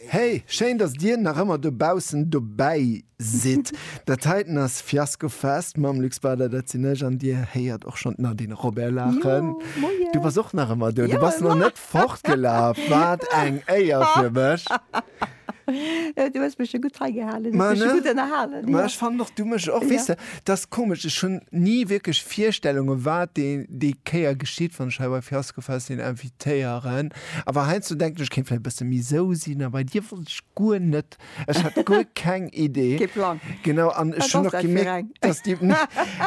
Hey, schéin dass dir nach ëmmer dobaussen dobäi sidd. Dat heiten ass Fiasco Fest mam Luc Spader, dat sinn ech an dir héiert och schonn d'Nadine Robert laachen. Du bass och nach ëmmer do, du bass nach net fortgelaf, wat eng Éier fir mech. Du hues mech jo gutt hei gehalen. Ma, Mech ne? gutt ënnerhalen. Ma Ja. ech fannen och du mech och Ja. weess de, dass komesch, ech hunn ni wierklech Virstellunge wat dee déi Kéier geschitt, wann ech hei bei Fiasco Fest een invitéieren. Awer heiansdo denken ech, kéint vläicht e bësse méi sou sinn, a bei dir wollt ech guer net. Ech hat guer keng Idee. Kee Plang. Genau, an Wat ech hunn ass och dat fir gemierkt, eng? dass déi,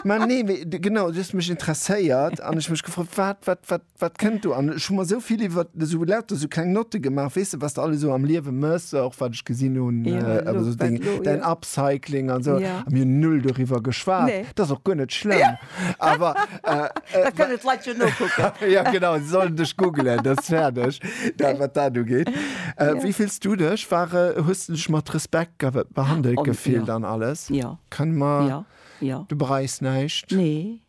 ma nee, mee, de, genau, du hues mech interesséiert an ech mech gefrot, wat, wat, wat, Wat kënnt do? An ech hu mer esou vill iwwer esou lauter esou kleng Notte gemaach, weess de, wat s de alles esou am Liewe mëss, och wat ech gesinn hunn, esou deng, däin Upcycling an esou. A mir hunn null doriwwer geschwat. Dat ass och guer net schlëmm, awer. Da kënnen d'Leit jo nokucken. Jo, genau, se sollen dech googelen, dat ass fäerdeg, dat wat dat ugeet. Wéi fills du dech? War, hues de dech mat Respekt behandelt gefillt an alles? Kënne mer, du bereis näischt? Nee,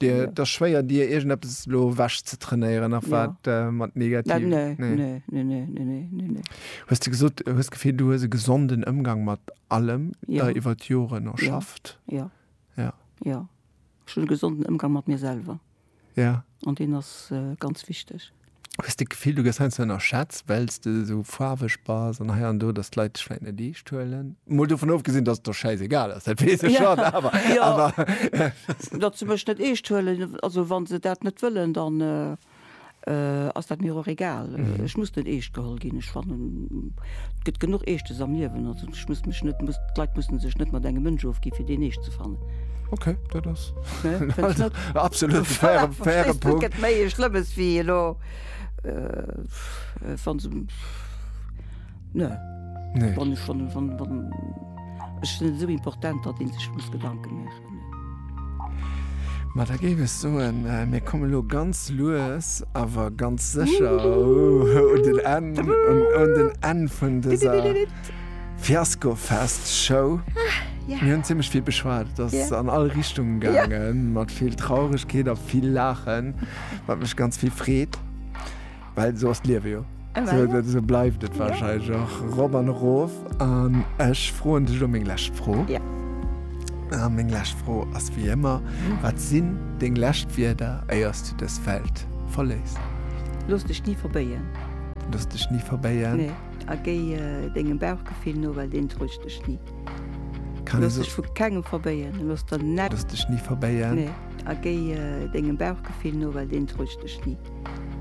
Et ass schwéier dir iergendeppes elo ewech ze trainéieren nach wat mat negativ. Hues de gesot hues d'Gefill du hues e gesonden Ëmgang mat allem der iwwer d'Joren erschafft? Jo ech hunn e gesonden Ëmgang mat mir selwer an deen ass ganz wichteg. Hues de d'Gefill, du gëss heiansdo ënnerschätzt, well s de esou faarweg bass an hei an do, datt d'Leit dech vläicht net eescht huelen? Mol dovun ofgesinn, datt et der schäisegal ass, dat weess ech schonn, awer, awer. Jo, datt se mech net eescht huelen, also wa se dat net wëllen, dann ass dat mir och egal. Ech muss net eescht geholl ginn. Ech fannen, et gëtt genuch Eeschtes am Liewen. Ech muss mech net muss d'Leit mussen sech net mat engem Mënsch ofgi fir deen eescht ze fannen. Okay, dat ass absolut faire, faire Punkt. Gëtt méi e Schlëmmes wéi elo äh, wann se ne nee. wann, wann, wann, wann, ech sinn esou important, datt een sech muss Gedanke mécht. Ma da géif ech soen, mir komme lo ganz lues awer ganz sécher un den Enn, un den Enn vun dëser Fiaskofest-Show. Mir hunn zimmlech vill beschwat, et ass an all Richtunge gaangen, mat vill Trauregkeet a vill Laachen, wat mech ganz vill freet. Well esou ass d'Liewe jo. Esou bleift et warscheinlech och erop an erof. An ech froen dech elo meng lescht Fro. A meng lescht Fro ass wéi ëmmer, Wat sinn deng lescht Wierder, éier s du dës Welt verléiss? Looss dech ni verbéien. Looss dech ni verbéien. Nee. A géi dengem Bauchgefill no, well deen täuscht dech ni. Looss dech vu kengem verbéien. Looss der net. Looss dech ni verbéien. Nee. A géi dengem Bauchgefill no, well deen täuscht dech ni.